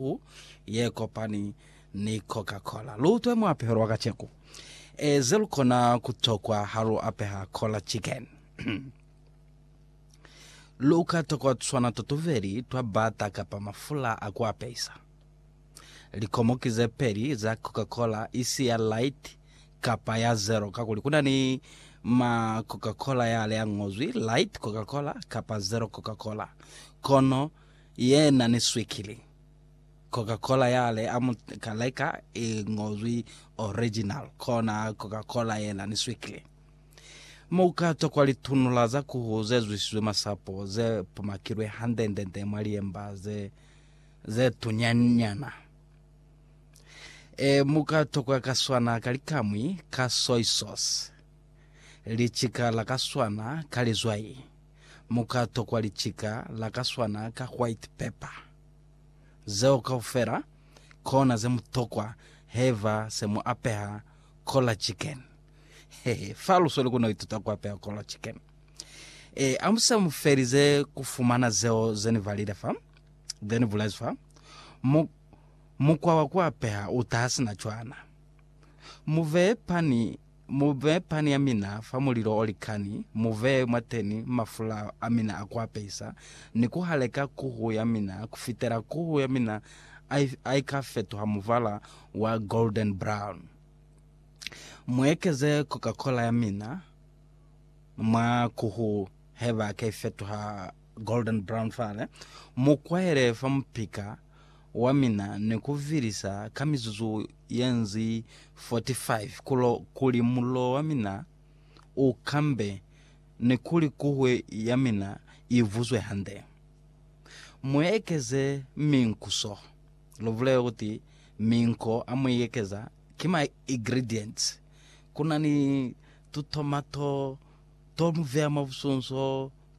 Hu ye kopani ni Coca Cola. Lu utwe muapeho lwa kaceku e ze lu kona ku tokwa ha lu apeha Cola Chicken. Lu ka tokwa tuswana to tubeli twa bata kapa mafula a ku apehisa. Likomoki ze peli za Coca Cola, isi ya light kapa ya zero kakuli ku na ni ma Coca Cola yale a ñozwi light Coca Cola kapa zero Coca Cola. Kono Yena ni swikili. Coca-Cola yale a mu ka leka i ngozwi original, kona Coca-Cola yena ni swikili. Mu ka tokwa litunula za kuhu ze zwisizwe masapo ze pumakilwe hande-nde-nde mwa liemba ze, ze tunya-nyana. E, mu ka tokwa ka swana ka likamwi ka soy sauce, licika la ka swana ka lizwai. Mu ka tokwa licika la ka swana ka white pepper. Zeo kaufela kona ze mu tokwa haiba se mu apeha Cola Chicken. Hehe, fa lu sweli ku no ituta ku apeha Cola Chicken. E, amusa mu felize ku fumana zeo ze ni balile fa, ze ni bulezi fa, mu, mukwa wa ku apeha u taha sina cwana. Mu beye pani Mu bee pani ya mina fa mulilo o likani, mu bee mwateni mafula a mina a ku apesa, ni ku haleka kuhu ya mina ku fitela kuhu ya mina a i ka fetuha mubala wa golden brown. Mu ekeze Coca-Cola ya mina mwa kuhu heba ka i fetuha Golden Brown Fale, Mu kwaele fa mupika wa mina ni ku vilisa ka mizuzu ye nzi 45 kulo kuli mulilo wa mina u kambe ni kuli kuhwe ya mina i vuzwe hande. Mu ekeze minkuso, lu bulele kuti minko a mu ekeza ki ma ingredients. Ku na ni tutomato to mu veya mwa busunso,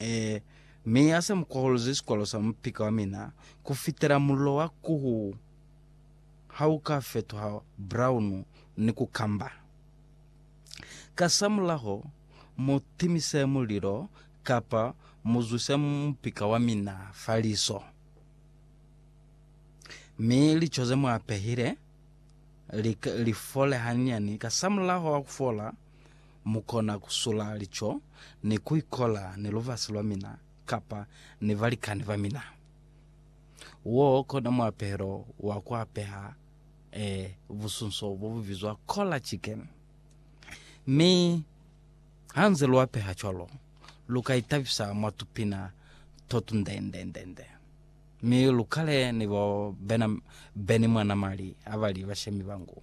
Ee, mi ya sa mu kwahuluzi sikwalo sa mupika wa mina ku fitela mulilo wa kuhu ha u ka fetuha braunu ni ku kamba. Kasamulaho, mu timise mulilo kapa mu zwise mupika wa mina fa liso. Mi lico ze mu apehile li, li fole hanyani. Kasamulaho wa ku fola, Mukona kusula lico ni kuikola ni lubasi lwamina kapa ni balikani bamina. Woo kona muapehelo wa kuapeha e busunso bobubizwa Cola Chicken. Mi hanze luapeha cwalo, lukaitabisa mwa tupina totundendendende mi lukale ni bo Benimwanamali abali bashemi bangu.